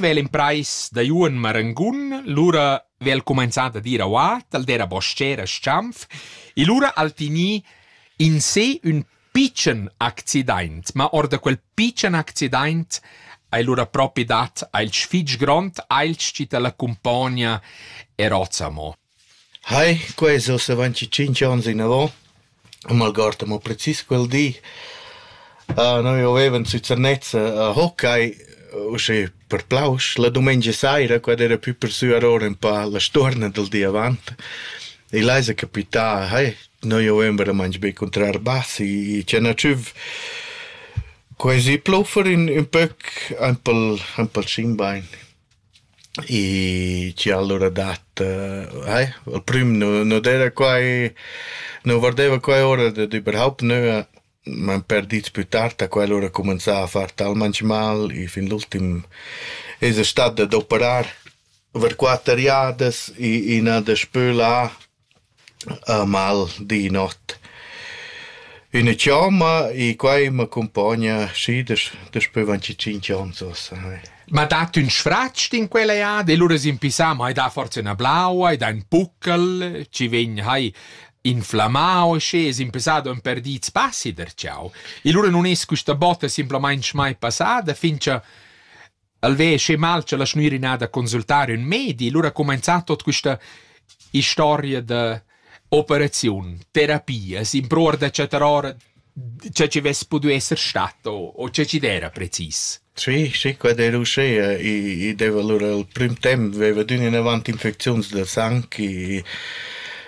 vel imprais da Juon Marangun, lura vel comenzà da dir auà, tal dera boschera Schanf, e lura al finì in sé ün pitschen accidaint, ma or da quel pitschen accidaint hai lura propi dat ailch fich grond, ailch chi ta l'accumpogna er ozamo. Hai, quai es ussa avanzi tschinch ons inavò. Non m'algord amo precis quel di. Noi avevan sü Zernez a hockey, uschè per plausch. La dumengia saira, quai d'eira pü per sü arora ün pa la stuorna dal di avant. E là esa capità, hai, noi avevan veramaing be cuntrà Arbas i Cianacciüf. Quai esi pluffer ün pöc, aint pel, aint pel Schimbein. E chi allura dat eh al prüm nu nu d'eira quai nu vardeva quai ora dad überhaupt nua, m'han perdit pü tard a quell'ura cumanzà a far talmaing mal e fin l'ultim esa stat dad operar per quatter jadas e i n'ha daspö là mal di not üna chomma e quai m'accumpogna schi daspö vinticinc ons uossa. Ma dat ün sfratsch in quella ead e lura s'impisà ma hai dà forsa üna blaua, hai dà ün puccal, chi vegn hai inflammau schi e s'impisà do ün per di spazi der ciao. E lura nun es quista botta simplamaing mai passada fin cha El ve sche mal cha la schnüra ina da consultar ün medi, lura comenzà tot quista historia da operaziun, terapia, s'impruor da chattar ora che ci vess pudu esser stat o, o che ci dera precis. Sì, sì, quad era uschea e, e deva allora il prim temp veva d'ün in avant infecziuns da sang e,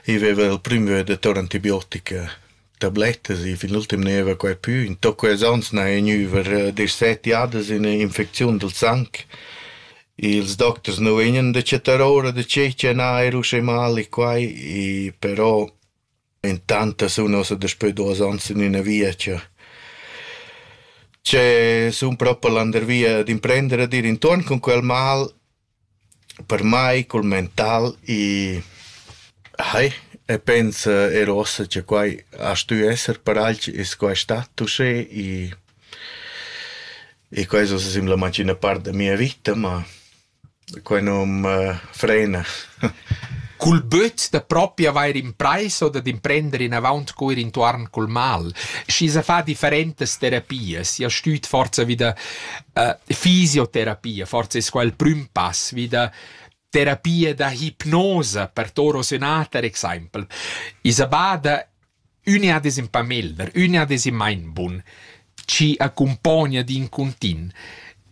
e veva il prim veda tor antibiotica. tablettas. I fin l'ultim gneva quai pü. In toc quels ons n'haja gnüver disset jadas ün'infecziun dal sang. Ils docters nu vegnan da chattar ora da che cha n'ha eir uschè mali quai, i però intanto sun ossa daspö duos ons in üna via cha che sun propa landervia d'imprender a dir intuorn cun quel mal Per mai cul mental i hai e pens er uossa cha quai a stü esser paralch, es quai stat uschè i i quai es uossa simplamaing üna part da mia vita, ma quai nu'm frena. Cul böt da propi avair imprais o dad imprender inavaunt cur intuorn cul mal, schi s'ha fà differentas terapias, i ha stüt forsa vi da uh, fisioterapia, forse è quel prüm pass vida terapia da hipnosa per toro sonata, per exempel. Isabada unia des in pamelder, unia des in mainbun, ci accompagna di in contint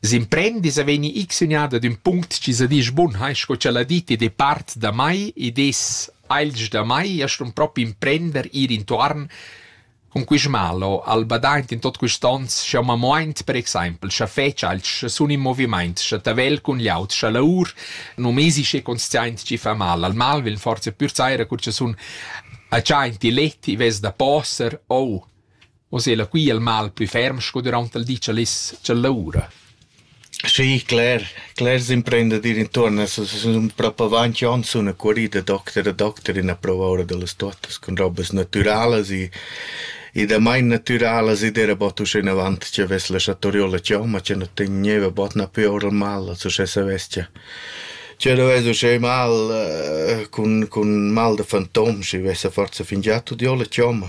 s'imprendis a veni x uniada d'un punct ci sa disch bun hai sco ce la diti de part da mai ed es ailg da mai e stun propi imprender ir intuarn Cun quist malo ha'l badaint in tot quists ons sch'eu m'ha muaint per exaimpel scha fetsch alch sun in movimaint, scha tavel cun glieud, scha laur. Nu m'esi schi consciaint chi fa mal. Al mal vegn forsa pür saira cur cha sun agiaint il let, i vess da poser o. O sela, qui è il mal plü ferm sco düraunt il di cha l'es cha laura. Schi, cler, clers imprendidir intuorn a sun propo avanti ons üna cuorida da docter a docter in a prouva oura da las tuottas cun robas natüralas e e damain natüralas ed era bod uschenavant chi avess la chatoriola chioma chi nu tegniva bod napü oura mal als uschè savess cha ch'eu nu vess uschè mal cun cun mal da fantom schi vessa forsa fingià tuot giò la chioma.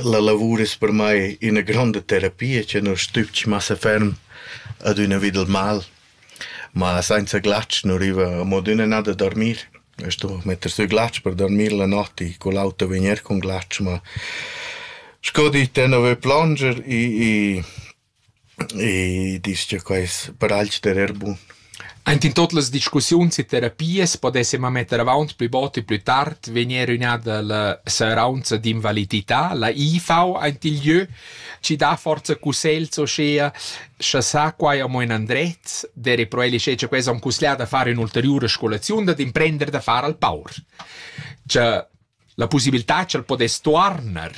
La lavur es per mai üna gronda terapia cha nu stübg massa ferm adüna vi dal mal, ma sainza glatsch nu riva amo adüna nà da dormir. A stu metter sü glatsch per dormir la not i cul auto vegner cun glatsch, ma sco dit, tenor plonger i E disch cha quai es per alch d'erer bun. Aint in tuot las discussiuns e terapias podess ema metter avaunt plü bod e plü tard vegnir ün'ada la seraunza d'invalidità, la IV aint il jö, chi dà forza cussegls uschea, scha sa quai amo ün andret, d'eira pro el ischè cha quai s'ha cusglià da far ün'ulteriura scolaziun, dad imprender da far al paur. Cha La pussibiltà ch'el podess tuorner,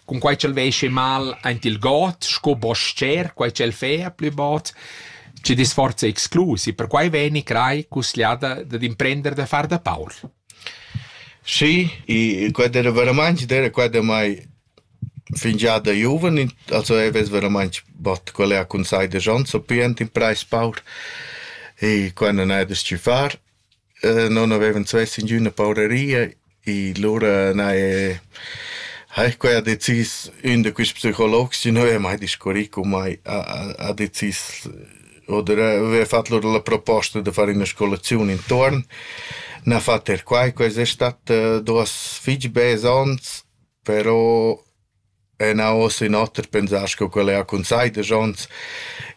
cunquai ch'el veschi mal aint il god sco bos-cher, quai ch'el fea plü bod, chi disforza exclus e perquai vegni crai cusgliada dad imprender da far da Paul. Sì, e quella era veramente, era quella mai fingià da giuven, also e ves veramente bot qual è a consai de Jean so pient in preis paur e quando ne des ci far Non avevan svess ingüna pauraria e lura n'haja haja quai decis ün da quists psicologs chi nu haja mai discurrì con mai, ha ha decis oder aveva fat lur la proposta da far üna scolaziun intuorn, n'ha fat er quai, quai es stat duos fich bels ons, però E nau ossa in oter pensar sco quel era cun seidesch onns.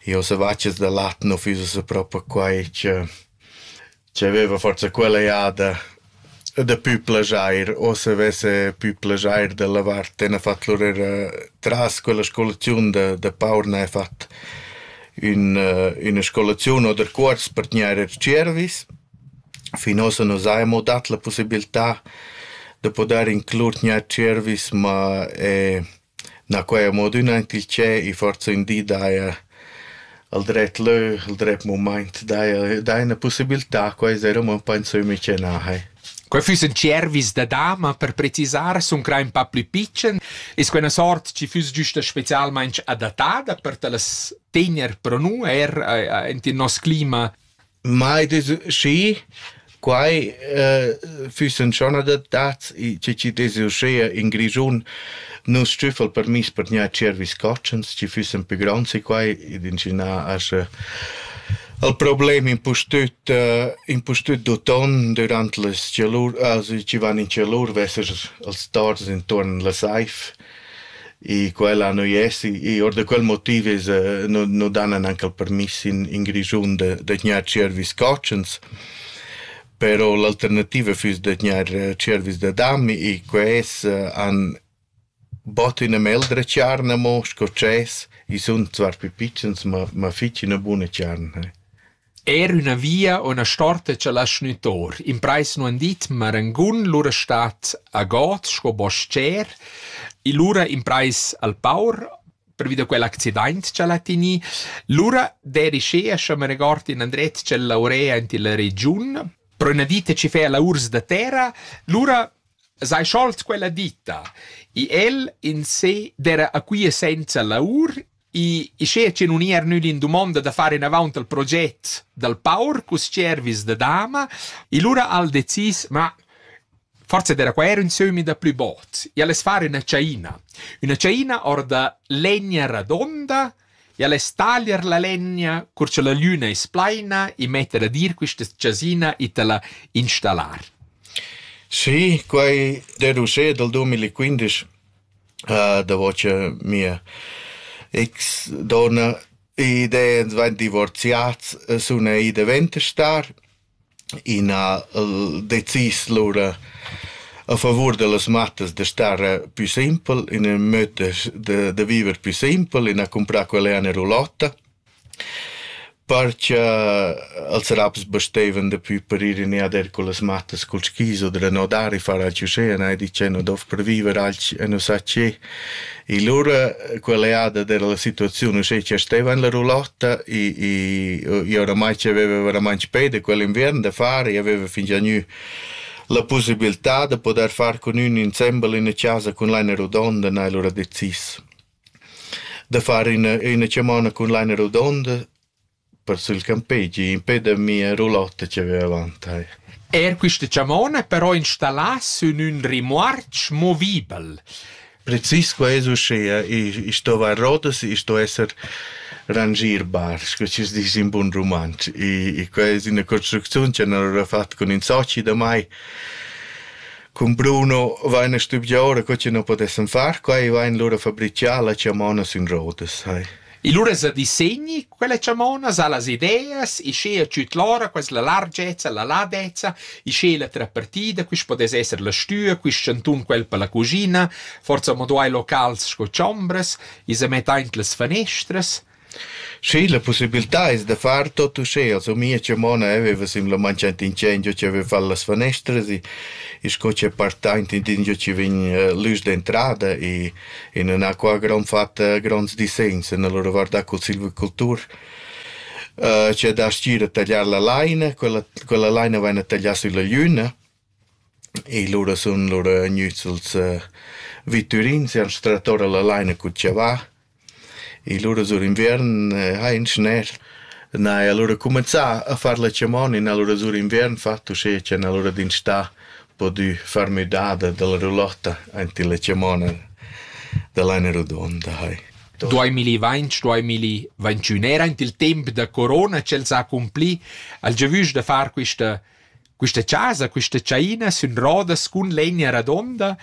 Io ossa vaccias da lat no füss ossa propa quai che che aveva forsa quella jada da pü plajair. Ossa avesse pü plajair da lavar. Ten ha fat lur eira tras quella scolaziun da da paur n'ha fat ün üna scolaziun oder cuors per tgnair er tschiervis. Fin ussa nus haja amo dat la pussibiltà da pudair inclur gnanc tschervis, ma na quai è amo adüna aint il tschè e forsa ün di daja al dret lö, al dret mumaint daja daja üna pussibiltà, quai es eir amo ün pa ün sömmi cha na hai. Quai füssen tschervis da dama per precisar, sun crà ün pa plü pitschen. Es quella sort chi füss güsta specialmaing adattada per ta las tegner pro nu eir aint in nos clima? mai des schi quai eh, füssen schon adattats i chi chi des uschea in Grischun nus stüffel permiss per gnà cervis cotschens chi füssen pü gronds e quai ed incinà asche al problem impustüt eh, impustüt d'uton durant las chalur also chi van in chalur vesser als tors intuorn la saif E quella nu es i our da quel motiv es nu nu dan anche il permiss in in Grischun da da tgnair tschiervis cotschens. Però l'alternativa füss da tgnair tschiervis da dam e quels han bod üna meldra tscharna mo sco dschess. I sun zwar pü pitschens, ma ma fich üna buna tscharna. Er üna via o üna storta cha lascha gnü tor. Imprais nu han dit, ma rangun lura stat a god sco bos-cher. E lura imprais al paur pervi da quell'accidaint cha l'ha tinì. Lura dedichea, scha me regord, in andret tschella urea aint illa regiun. Però üna dita chi fea laurs da terra. Lura s'hai scholt quella dita. E el in se d'era a quia senza laur I schea che nun ir nüd in dumonda da far inavaunt al proget dal paur cus cervis da dama, e lura al decis, ma forse era qua era un sömi da plü bot, e ales fare una ciaina. Una ciaina or da legna radonda, e ales taglier la legna, cur che la lüna es plaina, e metter a dir quista chasina e te la installar. Sì, quai deducé dal 2015 davo cha mia ex donna ed ans vain divorziats sun id dovent a star. I n'ha decis lura a favur da las mattas da star pü simpel, in ün möd da da viver pü simpel, in ha cumprà quella ena rulotta Par cha als raps basteivan dapü per ir in ed eir cullas mattas cul skis oder a nodar i farà tü usché e n'hai dit che nu dovrà per viver alch e nu sa che. E lura quella jada d'eira la situaziun uschè cha steva in la roulotta, i i i oramai c'aveva veramaing peda quell'inviern da far, i aveva fingià gnü la pusibiltà da podair far cun ün insembel in chasa cun laina rodonda, n'hai lura decis. Da far üna üna chamonna cun laina rodonda per sül campegi impè da mia roulotta chi vaiva avant tai. Eir quista chamonna però installà sün ün rimorch movibel. Precis qua es uschea, i i stova a rodas, i sto esser rangierbar, scu chi's disch in bun rumantsch. I i quai es üna construcziun cha nu l'ho fat cun ün soci damai. Cun Bruno vain stuvieu ora co chi nu podessan far quai, vain lura fabrichà la chamona sün rodas, hai. E lura sa disegni quella chamona, sa las ideas, e sche tschüt lora quella largezza, la ladezza, e sche la trapartida, quist podess esser la stüa, quist chantun quel per la cugina, forza mo duai locals sco chombras, e sa metta aint las fanestras, Schi, la pussibiltà es da far tot uschea, sumia cha mo na aveva simplamaing aint ingendo chi aveva fat las fanestras e e sco chi è partaint intindio chi vegn l'üs d'entrada e e nun ha qua grand fat gronds dissegns nel reguardà cul silvicultur chi ha da stira a tagliar la laina, quella quella laina vaina taglià sülla gliüna I lura sun lura gnüts suls vitturins e ans trattora la laina cun chavà. I lura sur inviern hain schner, na e alura cumanzà a far la chamona, na lura sur inviern fat uschè cha na lura d'instà pudü far müdada da la roulotta aint illa chamona da laina rodonda hai. Duamilli vainch, duamilli ventünera aint il temp da corona ch'el s'ha accumpli, ha'l giavüsch da far quista Questa chasa, questa tschaina sün rodas cun legna radonda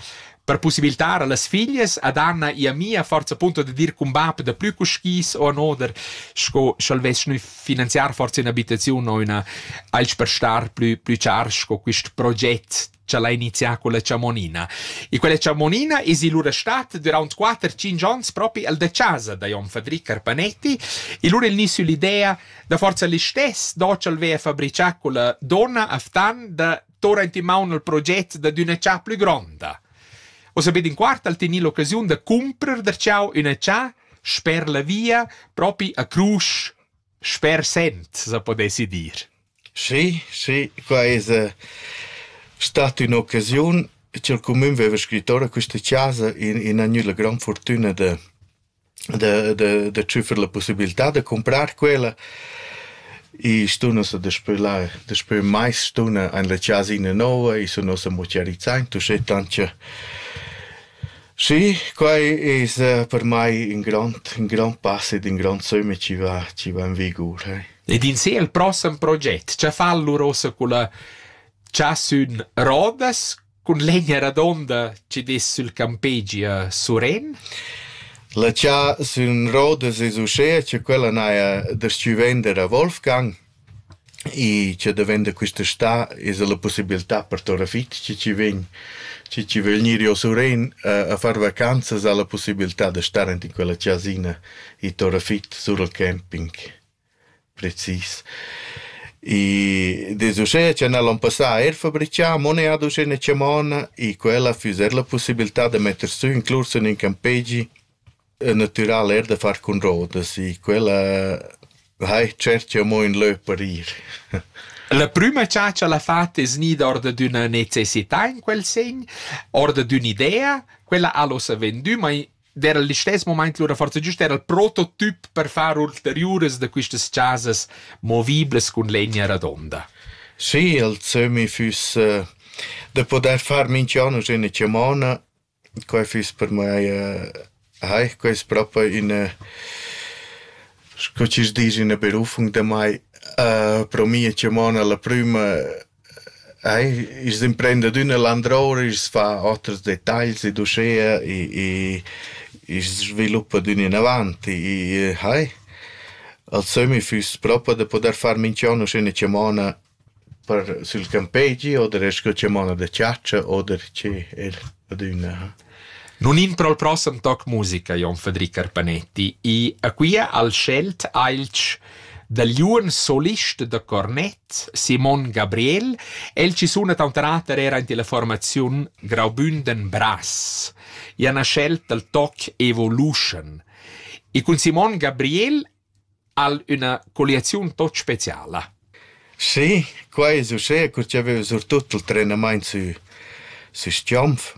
per possibiltar a las figlias ad Anna e a mia forza punto da dir cun bap da plü cu skis o an oder sco sch'el vess gnü finanziar forza ün'abitaziun o üna alch per star plü plü char sco quist proget cha l'ha inizià con la chamonina. E quella chamonina es lura stat duraunt 4-5 ons propi al da chasa da jon Fadric Carpanetti e lura il gnü süll'idea Da forza listess docel veva fabrichà quella donna Aftan da torrent in maun al proget da d'üna cha plü gronda. O sapete in quart al tenir l'occasiun da cumprer der ciao üna cha sper la via propi a Crusch sper Sent, se podessi dir. Sì, sì, qua es eh, stata ün'occasiun ch'el cumün veva scrittore questa chasa in in agnüda gran fortüna da da da da tschüffer la pussibiltà da cumprar quella. I stun ussa daspö là daspö mais stuna in la chasina nouva, i sun ussa mo chiarizzai uschè tant cha Sì, quai es per mai ün grond ün grond pass ed ün grond sömmi chi va chi va in vigur, eh. Ed in sé il prossem proget, cha fa lur ossa culla chasün Rodas, Cun l'egna radonda chi dess sül campegi a Suren. La cha sün rodas es uschea cha quella n'haja das-chü vender a Wolfgang e cha da vender quist'està esa la pussibiltà per tora fich chi chi vegn chi chi vögl gnir jo a Suren a far vacanzas ha la pussibiltà da star aint in quella chasina e tora fich sur al camping. Precis. I dess uschè cha n'ha'l ün passà eir fabrichà, mo neir ad uschè 'na chamonna e quella füss eir la pussibiltà da metter sü ün clus in ün campegi natüral eir da far cun rodas e quella hai tscherchà amo ün lö per ir. La prüma cha ch'el ha fat es gnida or dad üna necessità in quel segn, or dad ün'idea, quella al hossa vendü, ma era il listess moment lura forza giust era il prototip per far ulteriuras da quistas chasas moviblas cun legna radonda. Sì, il Zömi füss äh, da poder far minchian üna chamona, quai füss per mai äh, Hai, quai ist proprio eine, sco ci dici, una berufung da mai. Uh, pro mia chamona la prima Eir ils imprendiadüna landroura i's fa oters detagls ed uschea e e i's sviluppa d'ün inavant e e hai. Al sömmi füss propa da pudair far minchian uschè 'na chamona per sül campegi oder eir scu chamona da chatscha oder che eir adüna ha. Nun in pro'l prossem toc musica, Jon Fadri Carpanetti, i a quia al schelt ailch da liun solist da cornet Simon Gabriel. El chi suna tauter ater eir aint illa formaziun Graubünden-Brass. I ha na schelt dal toc Evolution. E cun Simon Gabriel Ha'l üna colliaziun tot speciala. Sì, quai es uschea cur chi aveva surtut il trenamaint sü sü Schiomf.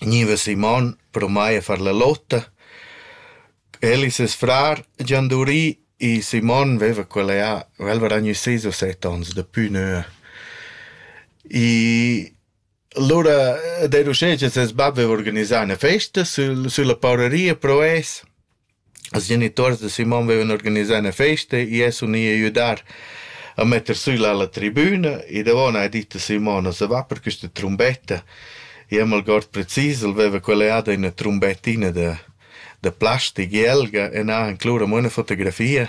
Gniva Simon pro mai a far la lotta. El e ses frar gian durì e Simon veva quella jà, vel varà gnü sis o set ons, dapü nua. I Lura d'eir uschè cha ses bap vaiva organisà üna festa sül sülla paureria pro es. Als genituors da Simon vaivan organisà üna festa, i es uni a güdar a metter sül a la tribüna e davo n'ha dit a Simon as va per quista trumbetta. I am algord precis, el vaiva colliada üna trumbettina da da plastic jelga e n'ha inclus amo üna fotografia.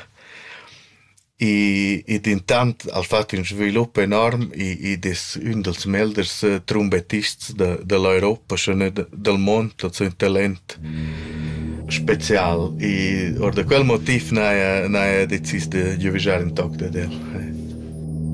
E, e dentant ha fatg in svilup enorm ed è ün dals meglers eh, trombettists de, de l'Europa, schon del mond, also un talent spezial. E or da quel motiv n'ha ella decis de giuvigiar in toc dad el.